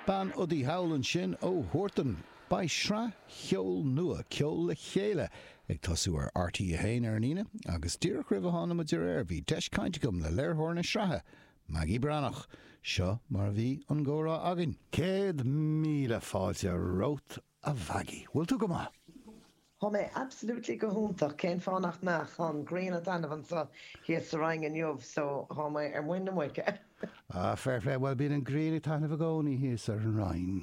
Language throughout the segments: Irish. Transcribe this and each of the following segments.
Bean udaí thall ansin ó Huartan. Beidh sraith cheoil nua, Ceol le Chéile, ag tosú ar RTÉ 1 ar an Aoine agus díreach roimh a thána muid ar aer bhí deis caint agam le léiritheoir na sraithe, Maggie Breathnach. Seo mar a bhí an gcomhrá againn. Céad míle fáilte romhat A Mhaggie, bhfuil tú go maith? Tá mé absolutely go hiontach, cén fáth nach mbeadh? Tá an ghrian ag taitneamh anseo thíos sa Rinn inniu so tá mé ar muin na muice. Ah, fair play, bhuel bíonn an ghrian ag taitneamh i gcónaí thíos ar an Rinn.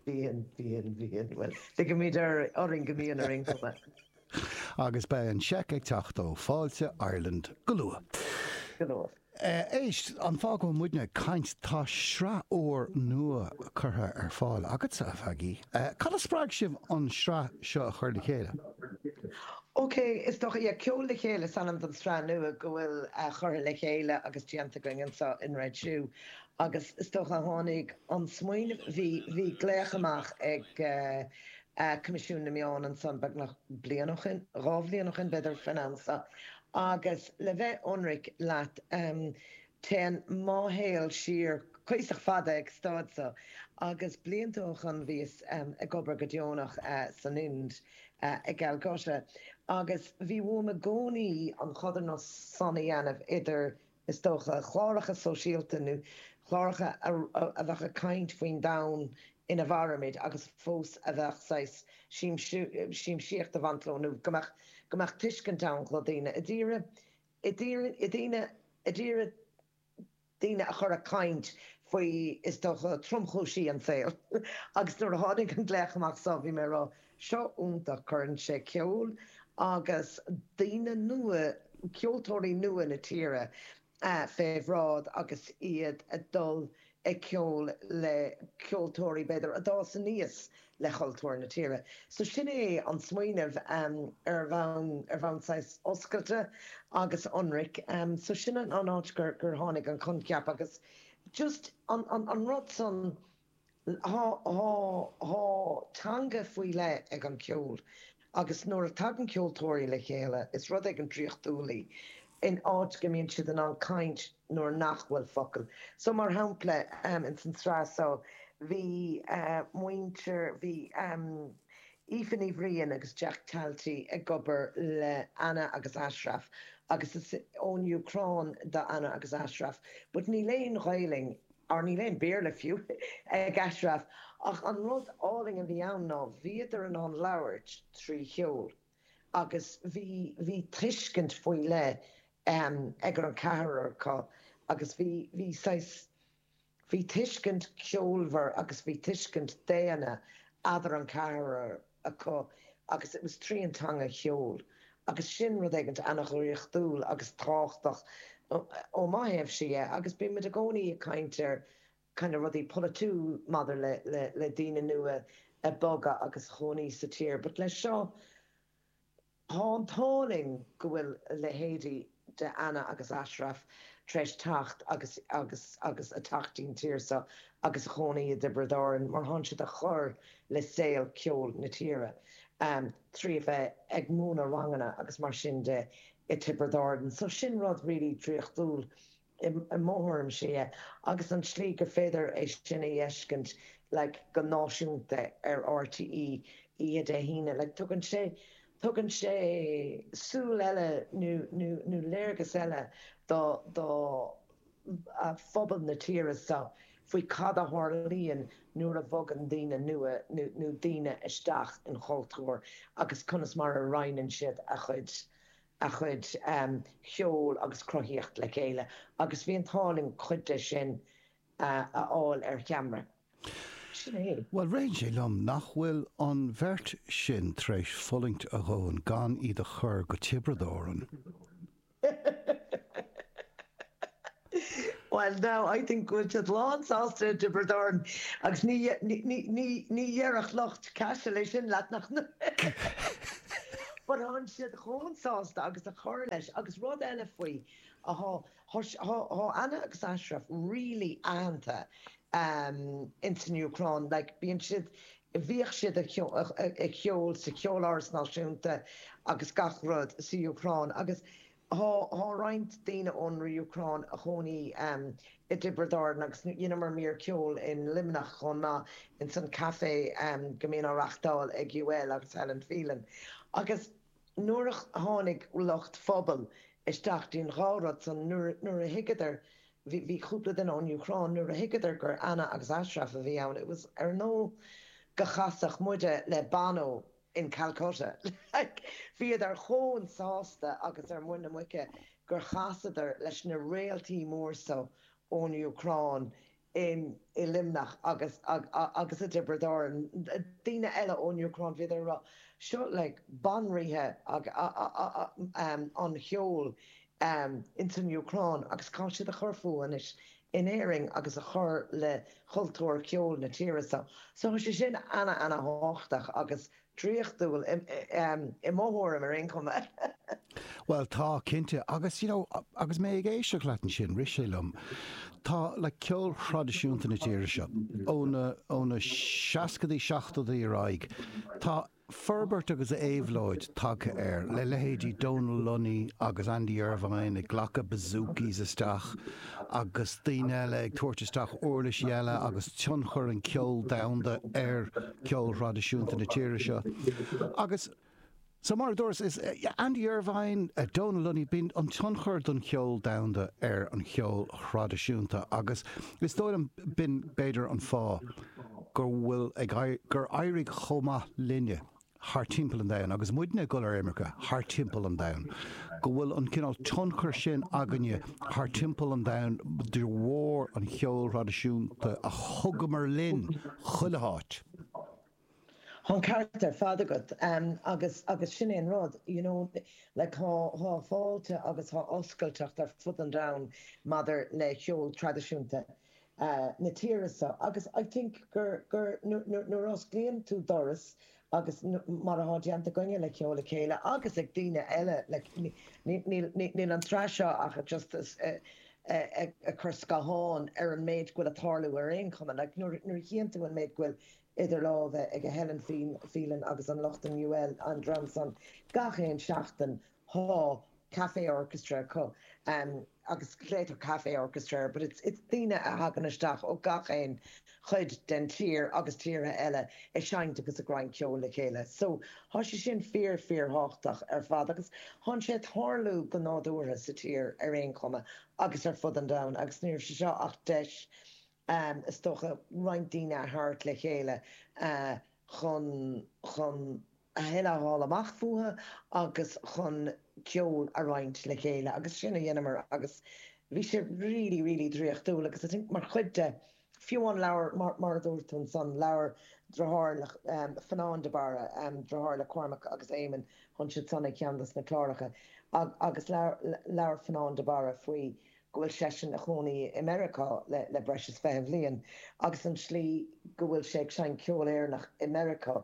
Bíonn, bíonn, bíonn, bhuel ligimid orainn go mbíonn ar aon chuma. Agus beidh an seic ag teacht ó Fáilte Ireland go luath. Go luath. Éist, an fáth go bhfuil muidne ag caint, tá sraith úr nua curtha ar fáil agatsa, a Mhaggie. Cad a spreag sibh an sraith seo a chur le chéile? Ok, is dócha, yeah, Ceol le Chéile is ainm don sraith nua go bhfuil curtha le chéile agus déanta againn anseo in Red Shoe agus is dócha a tháinig an smaoineamh, bhí, bhí glaoch amach ag Coimisiún na Meán ansan beagnach bliain ó shin, dhá bhliain ó shin b'fhéidir, faoin am seo Agus le bheith ionraic leat, téann mo shaol siar cuíosach fada ag an staid so, agus blianta ó shoin bhíos ag obair go deonach san Ind, i gCalcutta, agus bhí uaim i gcónaí an chodarsnacht san a dhéanamh idir is dócha, cláracha sóisialta nó cláracha a bheadh ag caint faoin domhan ina mhairimid agus fós a bheadh saghas siamsaíocht ag baint leo nó go mbeadh, go mbeadh tuiscint ann chló daoine, i dtíre, i dtíre, i dtíre, i dtíre, daoine a chur ag caint faoi, is dócha, tromchúisí an tsaoil. Agus nuair a tháinig an glaoch amach so, bhí mé ag rá, seo iontach. Cuireann sé ceol agus daoine nua, ceoltóirí nua na tíre fé bhráid agus iad ag dul ag ceol le ceoltóirí, b'fhéidir, a d'fhás aníos le cultúr na tíre. So sin é an smaoineamh ar bhonn, ar bhonn saghas oscailte agus ionraic. So sin an áit gur tháinig an coincheap agus just an rud san. Tá teanga faoi leith ag an gceol agus nuair a tagann ceoltóirí le chéile, is rud éigin draíochtúil í, in áit go mbíonn siad in ann caint nuair nach bhfuil focail. So, mar shampla, ins an tsraith so, bhí muintir, bhí Aoife Ní Bhriain agus Jack Talty ag obair le Anna agus Ashraf agus is ón Úcráin do Anna agus Ashraf but níl aon Ghaelainn or níl aon Béarla fiú ag Ashraf, ach an rud álainn a bhí ann ná bhíodar in ann labhairt trí cheol agus bhí bhí tuiscint faoi leith ag an ceathrar acu agus bhí bhí bhí tuiscint ceolmhar agus bhí tuiscint daonna eadar an ceathrar acu agus it was tríd an teanga cheoil agus sin rud éigint ana dhraíochtúil agus tábhachtach ó mo thaobhse dhe agus bíonn muid i gcónaí ag caint ar kind of rudaí polaitiúil maidir le le le daoine nua a bogadh agus a chónaí sa tír but le seo Tá an t-ádh linn go bhfuil leithéidí de Anna agus Ashraf tar éis teacht agus agus agus a teacht dtí'n tír seo agus a chónaí i dTiobraid Árann mar thánn siad a chur le saol ceoil na tíre trí a bheith ag múineadh ranganna agus mar sin de i Tiobraid Árann so sin rud really draíochtúil I mo thuairimse, yeah. Agus an tslí gur féidir é sin a fheiscint, like, go náisiúnta ar RTÉ oíche Dé hAoine, like, tugann sé, tugann sé súil eile nó, nó, nó léargas eile do, do phobal na tíre so faoi cad a tharlaíonn nuair a bhogann daoine nua nó, nó daoine isteach in chultúr agus conas mar a roinneann siad a chuid, a chuid cheoil agus cruthaíocht le chéile agus bhí an t-ádh linn cuid de sin a fháil ar cheamra. Bhuel, ritheann sé liom nach bhfuil an bheirt sin tar éis fulaingt a dhóthain gan iad a chur go Tiobraid Árann. Bhuel now, I think go bhfuil siad lán sásta i dTiobraid Árann agus ní, ní, ní dhéarfadh lucht Cashel é sin leat nach But thánn siad chomh sásta agus a chur leis agus rud eile faoi, thá, thá, thá Anna agus Ashraf really aitheanta ehm in san Úcráin like bíonn siad, bhíodh siad a' a' a' ceol sa Cheoláras Náisiúnta agus gach rud sa Úcráin agus Tá roinnt daoine ón Úcráin a chónaí i dTiobraid Árann agus dheineamar mír ceoil in Luimneach chomh maith ins an café go mbíonn á reachtáil ag UL agus Helen Phelan. Agus nuair a tháinig lucht Phobal isteach don dá rud san, nuair a thuigeadar, bhí cúpla duine ón Úcráin, nuair a thuigeadar gur Anna agus Ashraf a bhí ann, it was, ar nós go chasfadh muide le Bono. in Calcutta. Like, bhíodar chomh sásta agus ar muin na muice gur chasadar leis na réaltaí mór so ón Úcráin in, i Luimneach agus, agus i dTiobraid Árann. Daoine eile ón Úcráin, bhíodar a rá, seo, like, banríthe an cheoil um ins an Úcráin agus tá siad ag cur fúthu anois in Éirinn agus ag cur le cultúr ceoil na tíre so. So thá sé sin ana ana thábhachtach agus draíochtúil i mo thuairim ar aon chuma. Bhuel tá, cinnte. Agus you know agus mé ag éisteacht leat ansin rith sé liom, tá like ceol traidisiúnta na tíre seo, ó na ó na seascadaí, seachtóidí ar aghaidh, tá Forbairt agus éabhlóid tagtha air, le leithéidí Donal Lunny agus Andy Irvine ag glacadh bouzoukis isteach agus daoine eile ag tabhairt isteach uirlisí eile agus tionchar an cheoil domhanda ar cheol thraidisiúnta na tíre seo agus So mar a dúras, is Andy Irvine, Donal Lunny, bíonn an tionchar den cheol domhanda ar an cheol thraidisiúnta agus is dóigh liom b'in b'fhéidir an fáth. go bhfuil ag éirí, gur éirigh chomh maith linne thart timpeall an domhain, agus muidne ag dul ar imirce thart timpeall an domhain, go bhfuil an cineál tionchair sin againne thart timpeall an domhain de bharr an cheoil thraidisiúnta a thugamar linn chuile áit. Tá an ceart ar fad agat agus, agus sin é an rud, you know, like tá, tá fáilte agus tá oscailteacht ar fud an domhain maidir le ceol traidisiúnta. eh, na tíre seo agus I think gur, gur nuair, nuair, nuair a osclaíonn tú doras agus mar atá déanta againne le Ceol le Chéile agus ag daoine eile, like ní, ní, níl, ní, níl an tsraith seo ach just eh, eh, ag cur scáthán ar an méid go bhfuil a' tarlú ar aon chuma, like nuair, nuair a chíonn tú an méid go bhfuil idir lámha ag Helen Phelan agus an lucht in UL, an dream san gach aon seachtain, Tá Café Orchestra acu agus glaeitear Café Orchestra air but it's it's daoine a thagann isteach ó gach aon chuid den tír agus tíortha eile ag seinnt agus ag roinnt ceoil le chéile so tá sé sin fíor fíor thábhachtach ar fad agus thánn sé a' tarlú go nádúrtha sa tír ar aon chuma agus ar fud an domhain agus ní raibh sé seo ach deis is dócha roinnt daoine a thabhairt le chéile chun chun a thuilleadh a fháil amach fúthu agus chun ceol a roinnt le chéile agus sin a dheineamar agus bhí sé really, really draíochtúil agus I think mar chuid de, fiú an leabhar mar a dúirt tú ansan, labhair deartháir le Fionán de Barra, deartháir le Cormac agus Éamonn, thánn siad san i gceann dos na cláracha agus labhair Fionán de Barra faoi go bhfuil seisean ina chónaí i Meiriceá le breis is fiche bhliain agus an slí go bhfuil sé ag seinnt ceol Éireannach i Meiriceá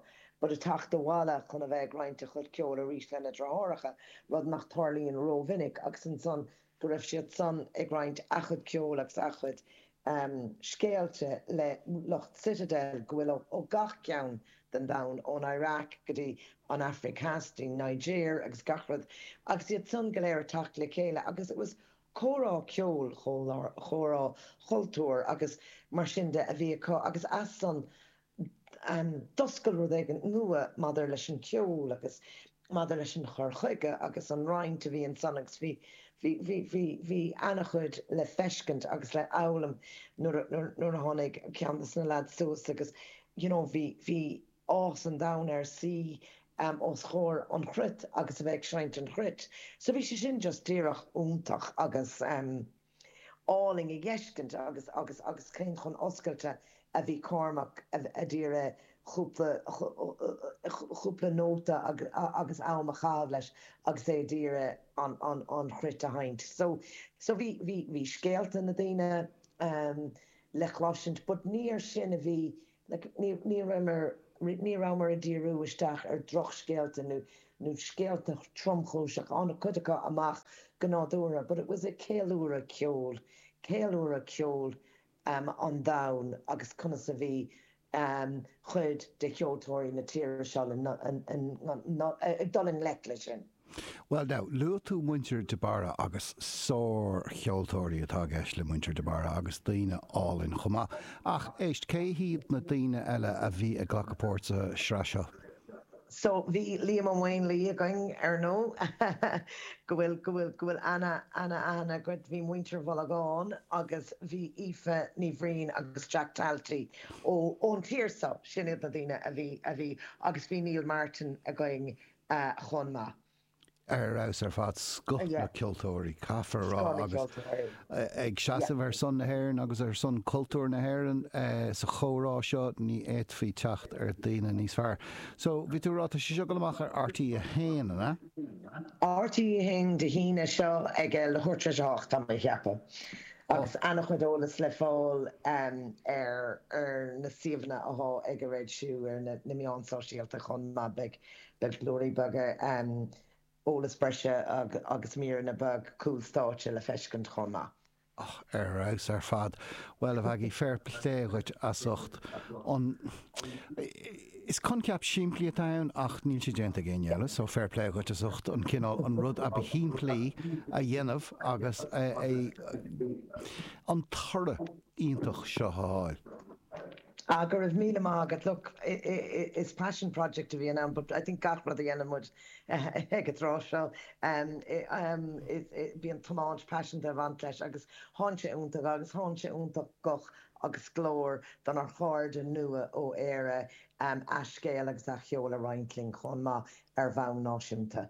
but ag teacht abhaile chun a bheith ag roinnt a chuid ceoil arís lena deartháireacha, rud nach dtarlaíonn ró-mhinic agus ansan go raibh siad san ag roinnt a gcuid ceoil agus a gcuid scéalta le lucht Citadel go bhfuil ó gach ceann den domhan, ón Iraq go dtí an Aifric Theas, go dtí Niger agus gach rud agus iad san go léir ag teacht le chéile agus it was Comhrá ceoil, comhrá cultúir agus mar sin de a bhí acu agus as san d'oscail rud éigin nua maidir leis an cheol agus maidir leis an chur chuige agus an roinnt a bhí ansan agus bhí ana-chuid le feiscint agus le foghlaim nuair a tháinig ceann de na lads suas agus you know bhí bhí áthas an domhain air suí os comhair an chruit agus a bheith ag seinnt an chruit. So bhí sé sin just díreach iontach agus álainn le feiscint agus agus agus cé chomh oscailte a bhí Cormac ag iarraidh chúpla chúpla nóta agus am a chaitheamh leis agus é ag iarraidh an an an chruit a sheinnt. So so bhí bhí bhí scéalta na daoine le cloisint but níor sin a bhí Ní rabhamar ag díriú isteach ar dhrochscéalta nó scéalta tromchúiseacha, tháinig cuid acu amach go nádúrtha, but it was a ceiliúradh ceoil, ceiliúradh ceoil an domhain agus conas a bhí cuid de cheoltóirí na tíre seo ag dul i ngleic leis sin. Bhuel, now, luaigh tú muintir de Barra agus sár-cheoltóirí atá i gceist le muintir de Barra agus daoine álainn chomh maith. Ach, éist, cé hiad na daoine eile a bhí ag glacadh páirt sa tsraith seo? So, bhí Liam Ó Maonlaí againn, ar ndóigh, go bhfuil, go bhfuil, go bhfuil ana, ana-aithne agat, bhí muintir Mhullagáin agus bhí Aoife Ní Bhriain agus Jack Talty ó, ón tír seo, sin iad na daoine a bhí, a bhí, agus bhí Neil Martin againn, chomh maith. ar fheabhas ar fad scoth na gceoltóirí, caithfear a rá, agus ag seasamh ar son na hÉireann agus ar son cultúr na hÉireann sa chomhrá seo ní fhéadfaí teacht ar dhaoine níos fearr. So, bhí tú ag rá, tá sé seo ag dul amach ar RTÉ1, an ea? RTÉ1 Dé hAoine seo ag a leathuair tar éis a hocht, tá mé ag ceapadh, agus an-chuid eolas le fáil ar na suíomhanna atá ag a réidh siúd ar na meáin sóisialta chomh maith. Beidh Beidh glórtha beaga, eolas breise agus míreanna beag cúl stáitse le feiscint chomh maith. Ah ar fheabhas ar fad. Bhuel, a Mhaggie, féar plé dhuit as ucht an. Is coincheap simplí atá ann ach níl sé déanta ag éinne eile, so féar plé dhuit as ucht an cineál, an rud ab shimplí a dhéanamh agus an toradh iontach seo a fháil. Ah go raibh míle maith agat. Look, is passion project a bhí ann but I think gach rud a dhéanann muid ag an tráth seo bíonn tiomáint paiseanta ag baint leis agus tá sé iontach agus tá sé iontach guth agus glór donár chairde nua ó Éire a scéal agus a cheol a roinnt linn chomh maith ar bhonn náisiúnta.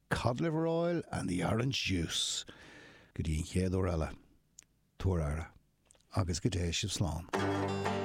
Cod liver oil and the orange juice! Go dtí an chéad uair eile, tabhair aire, agus go dté sibh slán.